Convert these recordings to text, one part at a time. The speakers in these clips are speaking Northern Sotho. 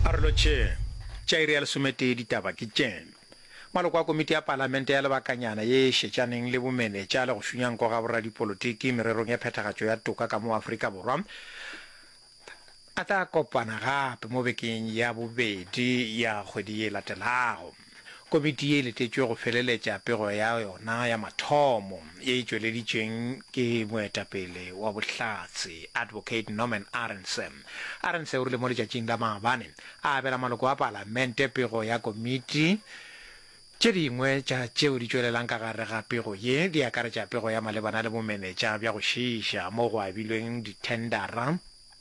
a re lotšheng tša iri ya lesometee ditaba ke tše maloko a komiti ya palamente ya lebakanyana ye e šetšaneng le bomenetša le go šunyanko ga boradipolotiki mererong ya phethagatšo ya toka ka mo afrika borwa a tla kopana gape mo bekeng ya bobedi ya kgwedi ye e latelago Komiti ye e letetšwe go feleletša pego ya yona ya mathomo ye e tšweleditšweng ke moetapele wa Bohlatse, Advocate Norman Arendse. Arendse o rile mo letšatšing la maabane a abela maloko a Palamente pego ya komiti. Tše dingwe tša tšeo di tšwelelang ka gare ga pego ye di akaretša pego ya malebana le bomenetša bja go šiiša mo go abilweng dithendara,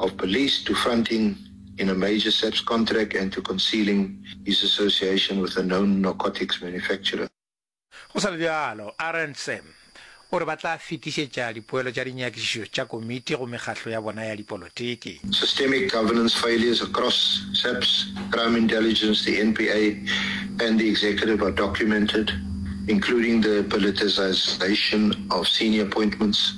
of police to fronting in a major SAPS contract and to concealing his association with a known narcotics manufacturer. Go sa le bjalo, Arendse o re ba tla fetišetša dipoelo tša dinyakišišo tša komiti go mekgatlo ya bona ya dipolotiki. Systemic governance failures across SAPS, Crime Intelligence, the NPA and the Executive are documented, including the politicisation of senior appointments,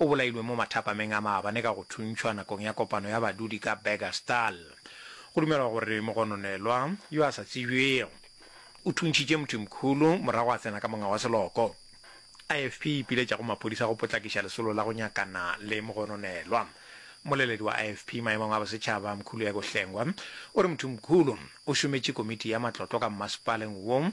O bolailwe mo mathapameng a maabane ka go thuntšhwa nakong ya kopano ya badudi ka Burgersdal. Go dumelwa gore mogononelwa, yo a sa tsebjwego, o thuntšhitše Mthimkhulu morago a tsena ka monga wa seloko. IFP e ipiletša go maphodisa go potlakiša lesolo la go nyakana le mogononelwa. Mmoleledi wa IFP maemong a bosetšhaba, Mkhuluyeko Hlengwa, o re Mthimkhulu o šometše komiti ya matlotlo ka mmasepaleng wo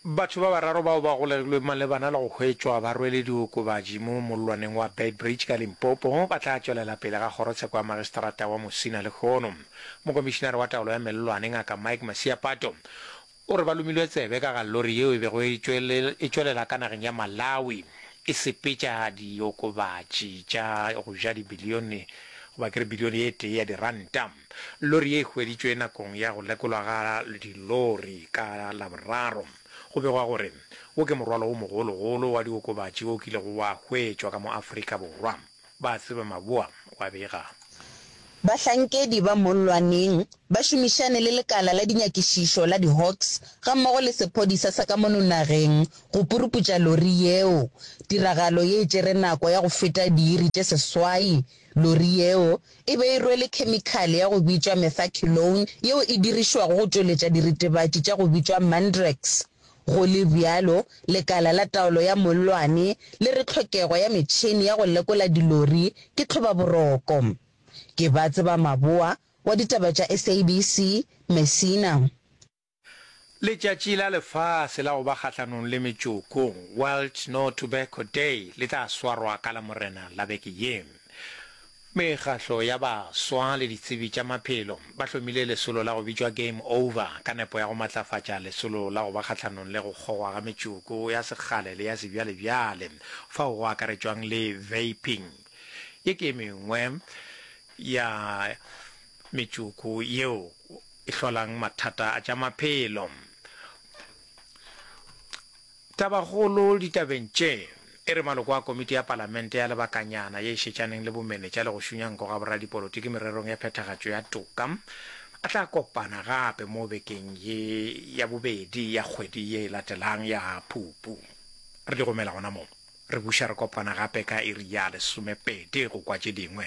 Batho ba bararo bao ba golegilweng malebana le go hwetšwa ba rwele diokobatši mo mollwaneng wa Beitbridge ka Limpopo ba tla tšwelela pele ga kgorotsheko ya magistrata wa Musina lehono. Mokomišinare wa taolo ya mellwane, Ngaka Mike Masiapato, o re ba lomilwe tsebe ka ga lori yeo e bego e tšwelela ka nageng ya Malawi e sepetša diokobatši tša go ja dibilione goba ke re bilione e tee ya diranta. Lori ye e hweditšwe nakong ya go lekolwa ga dilori ka Laboraro. Go begwa gore wo ke morwalo wo mogologolo wa diokobatši wo kilego wa hwetšwa ka mo Afrika Borwa, ba tseba Maboa wa bega. Bahlankedi ba mollwaneng ba šomišane le lekala la dinyakišišo la di-Hawks gammogo le sephodisa sa ka mono nageng go puruputša lori yeo. Tiragalo ye e tšere nako ya go feta diiri tše seswai Lori yeo e be e rwele khemikhale ya go bitšwa methacylone yeo e dirišwago go tšweletša diritebatši tša go bitšwa mandrax. Go le bjalo, lekala la taolo ya mollwane le re tlhokego ya metšhene ya go lekola dilori ke tlhobaboroko. Ke ba tseba maboa wa ditaba tša SABC, Messina. Letšatši la Lefase la go ba Kgahlanong le Metšoko, World No Tobacco Day, le tla swarwa ka Lamorena la beke ye. Mekgahlo ya baswa le ditsebi tša maphelo ba hlomile lesolo la go bitšwa Game Over ka nepo ya go matlafatša lesolo la go ba kgahlanong le go kgogwa ga metšoko ya sekgale le ya sebjalebjale fao go akaretšwang le vaping ye ke e mengwe ya metšoko yeo e hlolang mathata a tša maphelo. Tabakgolo ditabeng tše, e re maloko a Komiti ya Palamente ya Lebakanyana ye e Šetšaneng le Bomenetša le go Šunya Nko ga Boradipolotiki Mererong ya Phethagatšo ya Toka a tla kopana gape mo bekeng ye ya bobedi ya kgwedi ye e latelang ya Phupu. Re di romela gona moo. Re buša re kopana gape ka iri ya lesomepedi go kwa tše dingwe.